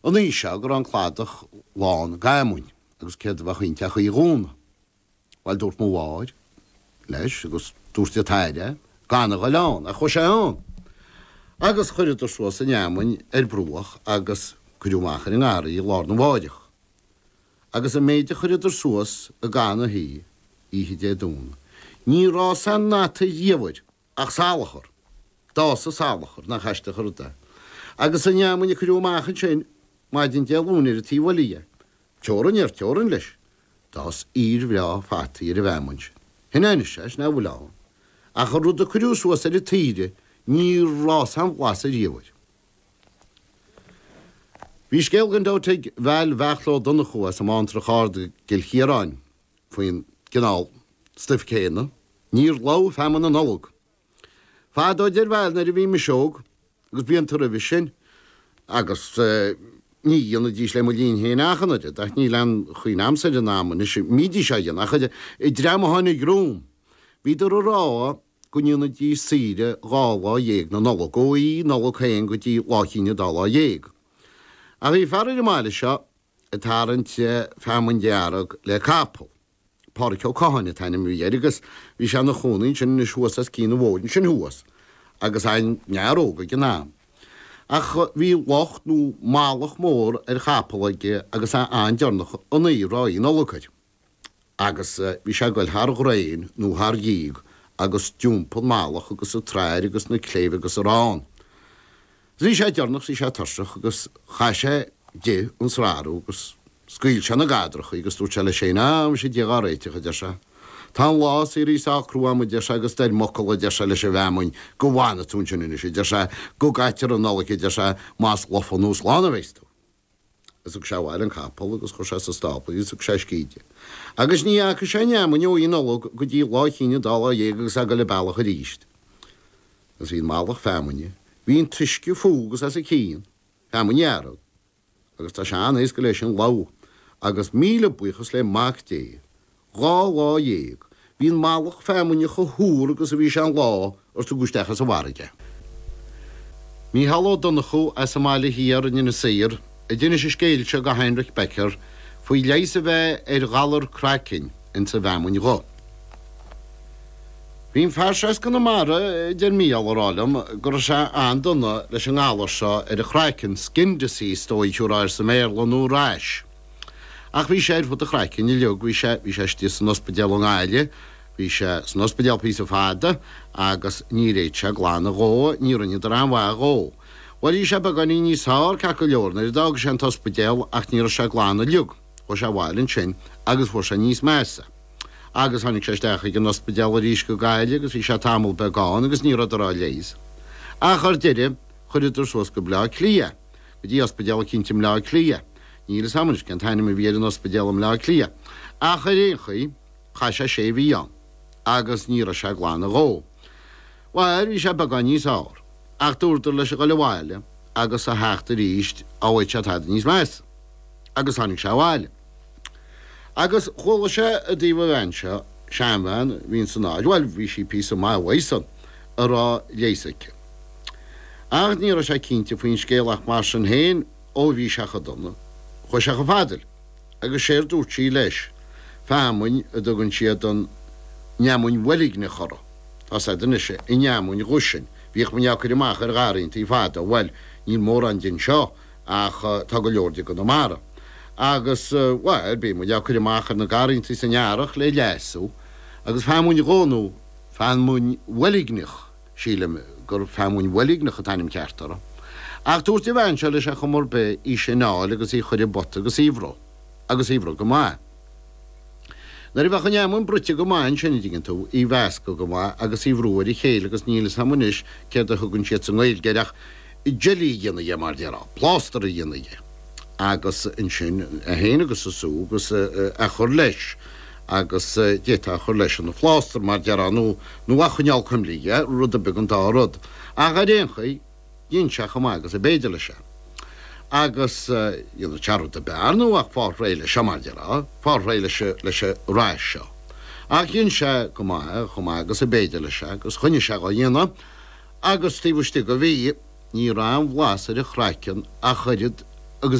An oíche seo go raibh an cladach lán d'fheamainn agus céard a bheadh inti ach Oíche Dhomhnaigh? Bhuel, dúirt mo mháthair leis agus dúirt an t-athair gan a ghoil ann, ach chuaigh sé ann! Agus chuireadar suas an fheamainn ar bruach agus cuireadh amach ar an ngarraí í lá arna mháireach. Agus an méid a chuireadar suas i gcaitheamh na hoíche, oíche Dé Domhnaigh, níor fhás aon fhata ariamh air! Ach salachar. D'fhás salachar. Nach aisteach an rud é? Agus an fheamainn a cuireadh amach ansin maidin Dé Luain ar an taobh eile dhe. Teorainn ar teorainn leis. D'fhás fhíor bhreá fataí ar an bhfeamainn sin. Shin é anois é, sin é a bhfuil ann. Ach an rud a cuireadh suas ar an tsaoire níor fhás aon bhlas ariamh air. Bhí scéal gan dabht ag Val Bheartla Ó Donnchú as an mBantrach Ard i gCill Chiaráin. faoin gcineál stuif céanna. Níor lobh feamainn na Nollag fadó bhuel nuair a bhí mise óg, agus blianta roimhe sin, agus ní dhéanaidís le mo linn féin ach an oiread, ach níl aon chuimhne a'amsa ar an am a mbídís á dhéanamh ach an dream a tháinig romham, bhíodar ag rá go ndéanaidís saoire dhá lá dhéag na Nollag, ó Oíche Nollag féin go dtí Lá Chinn an Dá Lá Dhéag. Ach bhí fear ar an mbaile seo, ag tarraingt feamainn dhearg le capall. Pádraic Ó Catháin an t-ainm a bhí air agus bhí sé ina chónaí ansin anois thuas os cionn an bhóthair ansin thuas agus é ina fhear óg ag an am. Ach bhí lucht nó malach mór ar chapall aige agus é an-deireanach an uair, Oíche Nollag air. agus bhí sé ag dul thar dhraein nó thar dhíog agus d'iompaigh an malach agus an tsrathair agus na cléibh agus arán. Bhí sé deirneach, bhí sé tuirseach agus chaith sé di an srathrú agus scaoil sé na gadrachaí agus dúirt sé leis féin, Á, muise, Dia dhá réiteach, a deir sé. Tá an lá saoire socrú agam, a deir sé, agus dar m'fhocal, a deir sé, leis an bhfeamainn, go bhfanfaidh tú ansin anois, a deir sé, go gcaitear an Nollaig, a deir sé, más lofa nó slán a bheas tú. Is thug sé abhaile an capall agus chuir sé sa stábla í is thug sé a scíth di. Agus ní fhaca sé an fheamainn ó Oíche Nollag go dtí Lá Chinn an Dá Lá Dhéag agus é ag dul an bealach aríst. Agus bhí an malach feamainne, bhí an t-uisce fúithi agus os a cionn, feamainn dhearg. Agus tá sé an-éasca léi sin lobhadh agus míle buíochas le Mac Dé Dhá lá dhéag. Bhí an malach feamainne chomh húr agus a bhí sé an lá ar tugadh isteach as an bhfarraige é. Mícheál Ó Donnchú as an mBaile Thiar in Inis Oírr a d'inis an scéal seo go Heinrich Becker faoi leigheas a bheith ar ghalar craicinn ins an bhfeamainn dhubh. Bhí an fear seo as Conamara, a deir Mícheál, ag rá liom go raibh sé an-dona leis an ngalar seo ar a chraiceann, skin disease, is dóigh, a thabharfá air sa mBéarla, nó rash. Ach bhí sé ar fud an chraicinn uilig, bhí sé, bhí sé istigh san ospidéal i nGaillimh, bhí sé san ospidéal píosa fada agus ní raibh sé ag glanadh dhó, ní rinneadar an-mhaith dhó. Bhuel, bhí sé beagáinín níos fhearr ceart go leor nuair a d'fhág sé an t-ospidéal ach ní raibh sé glan uilig, chuaigh sé abhaile ansin agus fuair sé níos measa. Agus tháinig sé isteach chuig an ospidéal arís go Gaillimh agus bhí sé tamall beag ann agus ní rabhadar dhá leigheas. Ach ar deireadh cuireadh ar suas go Bleá Cliath. go dtí ospidéal eicínt i mBleá Cliath, níl 'fhios a'm anois cén t-ainm a bhí ar an ospidéal i mBleá Cliath, ach ar aon chaoi, chaith sé sé mhí ann, agus ní raibh sé ag glanadh dhó. Bhail, bhí sé beagán níos fhearr, ach dúradar leis a ghoil abhaile agus a theacht aríst, dá bhfaigheadh sé tada níos measa. Agus tháinig sé abhaile. Agus chuala sé i dtaobh an bhean seo, seanbhean a bhí ann san áit, bhuel, bhí sí píosa maith uaidh san, a raibh leigheas aici. Ach ní raibh sé cinnte faoin scéal ach mar sin féin, ó bhí sé cho dona, chuaigh sé cho fada léi, agus séard dúirt sí leis, feamainn a dtugann siad an fheamainn bhoilgneach uirthi, tá 's agad anois an fheamainn dhubh sin, bhíodh muid á cur amach ar gharraíontaí fada, bhuel, níl mórán de anseo, Ach tá go leor de i gConamara. Agus, bhuel, bíonn muid á cur amach ar na garrantaí san earrach le leasú. Agus feamainn dhubh nó feamainn bhoilgneach, sílim gur feamainn bhoilgneach an t-ainm ceart uirthi. Ach dúirt an bhean seo leis ar chuma ar bith, í sin a fháil agus í a chur i bpota agus í a bhruith. Agus í a bhruith go maith. Nuair a bheadh an fheamainn bruite go maith ansin, a' dtuigeann tú, í a mheascadh go maith agus í a bhrú ar a chéile agus níl 'fhios a'm anois céard a thugann siad sa nGaeilge air ach jelly a dhéanamh dhe, mar dhéarfá, plástar a dhéanamh dhe agus ansin é féin agus an sú agus eh a' chur leis agus d'fhéadfá a chur leis ina phlástar mar déarfá nó, nó a' choinneáil cuimlí dhe, rud beag an dá rud ach ar aon chaoi. Rinne sé chomh maith agus ab fhéidir leis é. Agus cheannódh tarbh dhe, b'fhearr nó ach fáil réidh leis seo, mar déarfá, fáil réidh leis, leis an rash seo. Ach rinne sé go maith é, chomh maith agus ab fhéidir leis é, agus choinnigh sé dhá dhéanamh, agus taobh istigh de mhí ní raibh aon bhlas ar a chraiceann ach oiread agus